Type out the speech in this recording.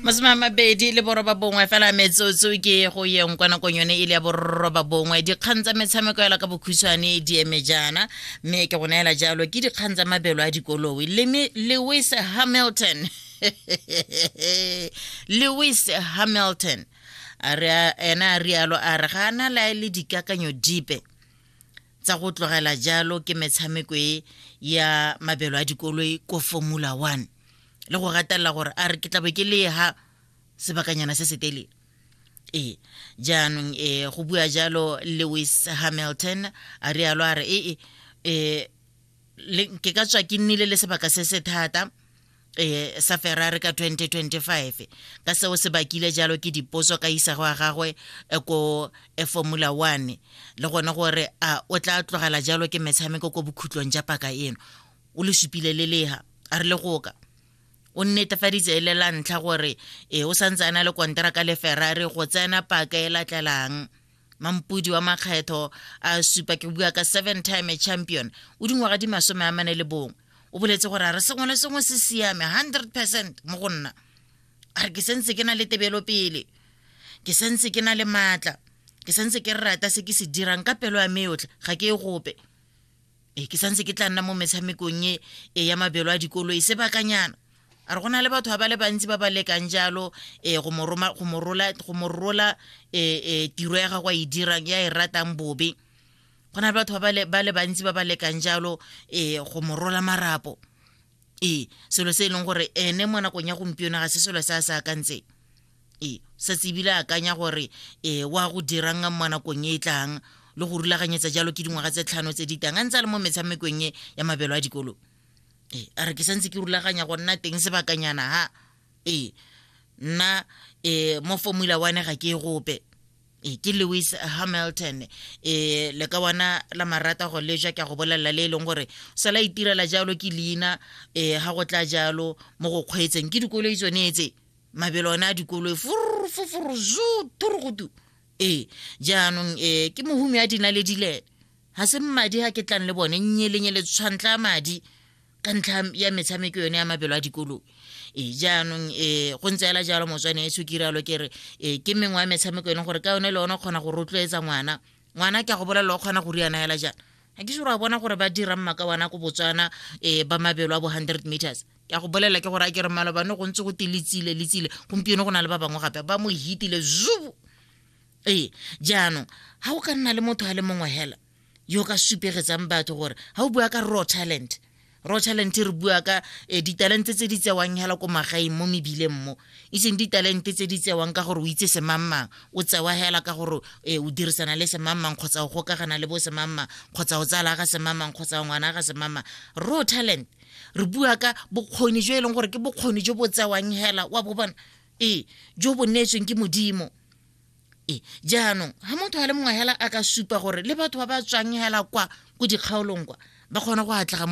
masome a mabedi le boroba bongwe fela metsotso ke go yeng kwa nakong yone e le ya boroba bongwe dikgang tsa metshameko yala ka bokhutshwane di eme jaana mme ke go neela jalo ke dikgang tsa mabelo a dikoloi Leme- lewis hamilton lewis hamilton a re a- ena a rialo a re ga a na lae le dikakanyo dipe tsa go tlogela jalo ke metshameko e ya mabelo a dikoloi ko formula one le go gatelela gore a re ke tlabe ke le ha sebakanyana se se telele ee jaanong e go bua jalo lewis hamilton a rialo a re ee um ke ka tswa ke nnile le sebaka se se thata e, sa ferrari ka 2025 ka seo se bakile jalo ke dipotso ka isago ya gagwe e, ko e, formula one le gone gore a o tla tlogela jalo ke metshameko ko bokhutlong ja paka eno o le supile le lega a re le goka o nnetefaditse e le la ntlha gore e o santse a na le konteraka le ferrari go tsena paka e latlelang mampudi wa makgetho a supa ke bua ka seven time champion o dingwaga di masome a mane le bongwe o boletse gore a re sengwe le sengwe se siame hundred percent mo go nna a re ke sentse ke na le tebelo pele ke sentse ke na le maatla ke sentse ke rata se ke se dirang ka pelo ya me yotlhe ga ke e gope e ke santse ke tla nna mo metshamekong e, e ya mabelo a dikolo e sebakanyana a re go na le batho ba ba le bantsi ba ba lekang jalo um go mo rola um tiro ya gago a e dirang ya e ratang bobe go na le batho ba le bantsi ba ba lekang jalo um go mo rola marapo ee selo se e leng gore ene mo nakong ya gompieno ga se selo se a se akantseng ee sa tsebile akanya gore ee wa go dirang mo nakong e e tlang le go rulaganyetsa jalo ke dingwaga tse tlhano tse di tang a ntse a le mo metshamekong e ya mabelo a dikolo ee a re ke santse ke rulaganya go nna teng sebakanyana ha ee nna ee mo formula one ga ke e gope e ke lewis hamilton e le ka wana la marata go leja ke a go bolelela le e leng gore sa la itirela jalo ke leina e ga go tla jalo mo go kgweetseng ke dikoloi tsone tse mabelo one a dikoloi furufufuru zu thurugutu ee jaanong e ke mohumi a dinaledilele ga se mmadi ga ke tlang le bone nnyelenyele tshwantla madi ka ntlha ya metshameko yone ya mabelo a dikolong e jaanong e go ntse ela jalo motswane e sukiralo ke re e ke mengwe ya metshameko e leng gore ka yone le one o kgona go rotloetsa ngwana ngwana ke a go bolelela o kgona go riana fela jang ga ke sure a bona gore ba dirang maka wana ko botswana um ba mabelo a bo hundred meters ke a go bolelela ke gore a ke re malobane go ntse go te letsile letsile gompieno go na le ba bangwe gape ba mo hitile zubu ee jaanong ga go ka nna le motho a le mongwe fela yo ka supegetsang batho gore ga o bua ka raw talent raw talent re bua ka eh, ditalente tse di tsewang hela ko magaeng mo mebileng mo e seng ditalente tse di tsewang ka gore o itse semangmang o tsewa hela ka gore eh, o dirisana le semangmang kgotsa o gokagana le bo semangmang kgotsa o tsala ga semangmang kgotsa ngwana ga semangmang raw talent re bua ka bokgoni jo e leng gore ke bokgoni jo bo tsewang hela wa bo bona ee jo bo neetsweng ke modimo e jaanong ga motho a le mongwe hela a ka supa gore le batho ba ba tswang hela kwa ko dikgaolong kwa ba kgone go atlega mo